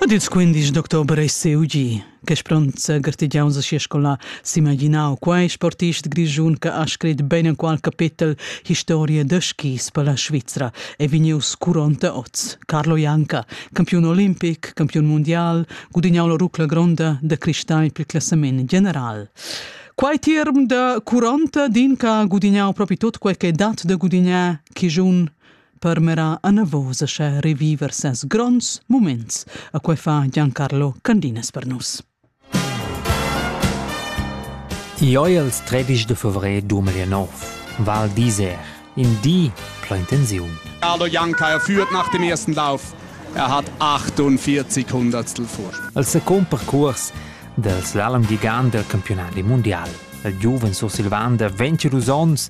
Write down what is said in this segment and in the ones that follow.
Ad ils 15 d'october è CUG, che spronza gartegiaun sa sia scola, s'imaginau quai sportist grischun che ha scrit ben enqual capitel Historia da skis per la Svizra e vegnius curonta oz. Carlo Janca, campiun olimpic, campiun mondial, gudignau la rucla gronda da cristai per il classament general. Quai tirm da curonta din che ha gudignau propi tot quel che dat da gudignar, chi giun permera anavos a sche reviver ses gronds moments, a quei fa Giancarlo Candinas per nus. Ioi els 13 de fevré 2009, Val d'Iser, in di pla intensiun. Carlo Janka er führt nach dem ersten Lauf. Er hat 48 Hundertstel Vorsprung. El second percurs del slalom gigant del campionat mundial. Il giuven sursilvan de 22 onns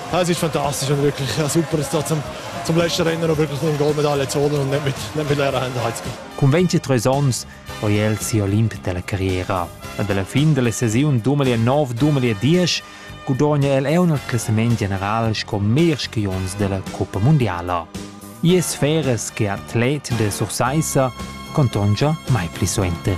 Ja, es ist fantastisch und wirklich ja, super, ist da zum, zum letzten Rennen noch wirklich ein Goldmedaille zu holen und nicht mit, nicht mit leeren Händen heimzugehen. Cun 23 ans ho el sia Olimp della carriera. Ad alla fin della sesiun 2009-2010 gudogna el eu nel classament general sco meglier skiunz della Coppa Mondiala. Ies feres che atlet de Sursaissa contongia mai pli suenter.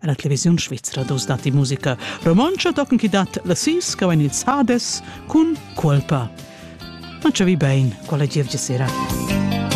En la televisiun svizra dus datti musica romontscha tochen chi dat la sis che vegn ils hades cun cuolpa. Ma cha vi bein, quella gievgia sera.